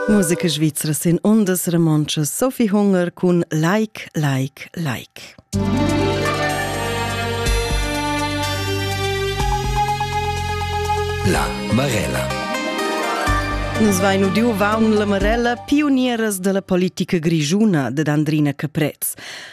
Musica svizra sin ondas romontschas Sophie Hunger cun Like, Like, Like. La Marella. Nus vain udiu vaun la Marella pionieras della politica grigiuna dad Andrina Caprez.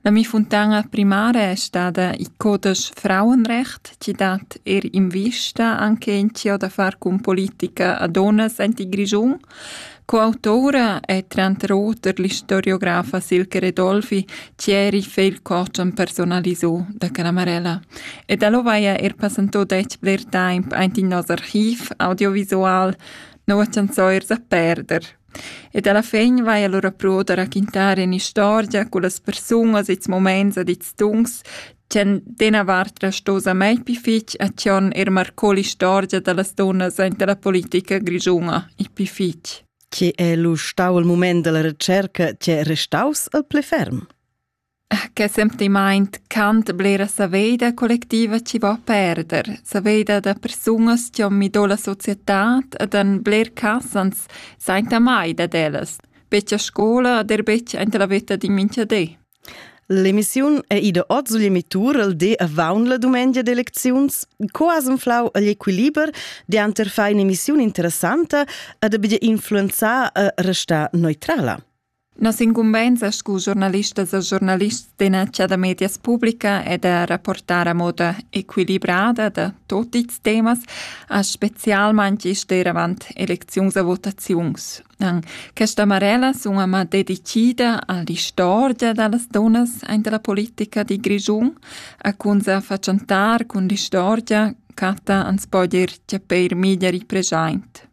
La mi funtana primara è stada il codesch Frauenrecht, chi dat eir invista anche in chiò da far cun politica a donnas aint in Grischun. Coautora è tranter oter l'istoriografa Silke Redolfi, chi eri feil coach am personalisò da Canamarella. E da lo vaia er passantò dec bler temp aint in nos archiv audiovisual, non vacianzò ers a perder. Ed alla fin vaia lura però da raquintar in'istorgia cullas persungas i'ls mumaints ed i'ls tuns ch'han d'ena vart resto samai pü fich attuorn eir marcò l'istorgia da las dunnas aint la politica grischuna il pü fich. Che es lu stau il mument dalla retscherca che è restaus il pli ferm? Che sentimaint cant blera saveida collectiva chi vo a perder, saveida da persunas chi hon mi do la societad ed han bler cas ans sainta mai dad ellas, betg a scoula ed eir betg aint la vetta d'in mincha di. L'emissiun è ida ot sugl emittur il di avaunt la dumengia d'elecziuns. Co as inflau agl equiliber dianter far in'emissiun interessanta ed abia influenzar e restar neutrala? Nossa incumbensa scu giornalistas e giornalists d'enacha da medias publica è da rapportar a moda equilibrada da tot ils temas, a specialmaing isch avant elecziuns e votaziuns. An questa marella sun ama dedicida a l'istorgia da las dunnas aint la politica di Grischun, a cun sa fatschantar cun l'istorgia Cata ans po dir tge peir miglieri preschaint.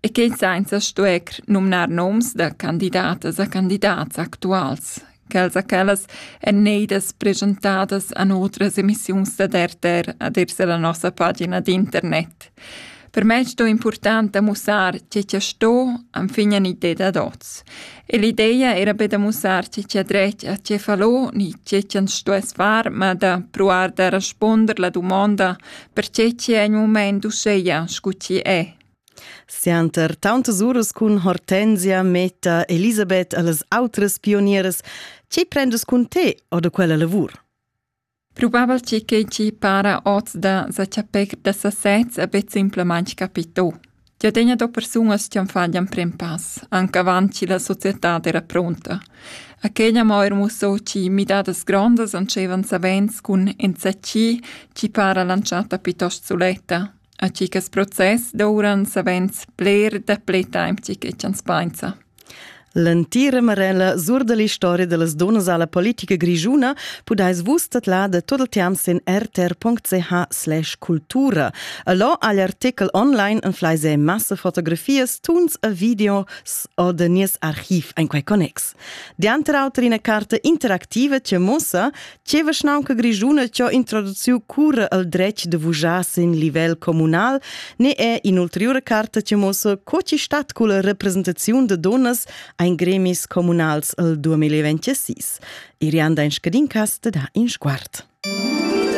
e quei sainza stuer numnar noms da candidatas a candidats actuals, quels a quellas èn neidas presentadas a otras emissiuns dad RTR ad ir la nossa pagina d'internet. Per me sto important da mussar che che sto anfin en idea da dots. E l'idea era be da mussar che che dret a che falò ni che che sto es far, ma da provar da responder la domanda per che che è in moment uscheia scu chi è. Sianter tauntas uras cun Hortensia metta Elisabeth a las autras pionieras, tgi prendas cun te o da quella lavur? Probabel tgi che tgi para oz da sa chapir da sasez a bet simplamain capito. Tia tegna do persunas che faglian pren pass, anche avant che la società era pronta. Aquella mo er musso ci midadas grondas ancevan savens cun enzacci ci para lanciata piuttosto suletta, A chi ch'es process douran savens bler dapli temp chi chi ch'ans painsa. L'entira marella sur da l'istoria da las dunnas a la politica grischuna pudais vus tadlar da tot il temps sin rtr.ch/cultura. E là ha l'artichel online en flaise massa fotografias, tuns e videos o da nies archiv en quei connex. Dianter auter ina carta interactiva che mussa Ce vischnaunca grischuna cho introduciu cura el dretg de vujar sin livel communal ne è in'ulteriore carta che mossa co ci stat culla representaziun de donas ein gremis communals el 2026. Irianda in scadin cast da in sguard.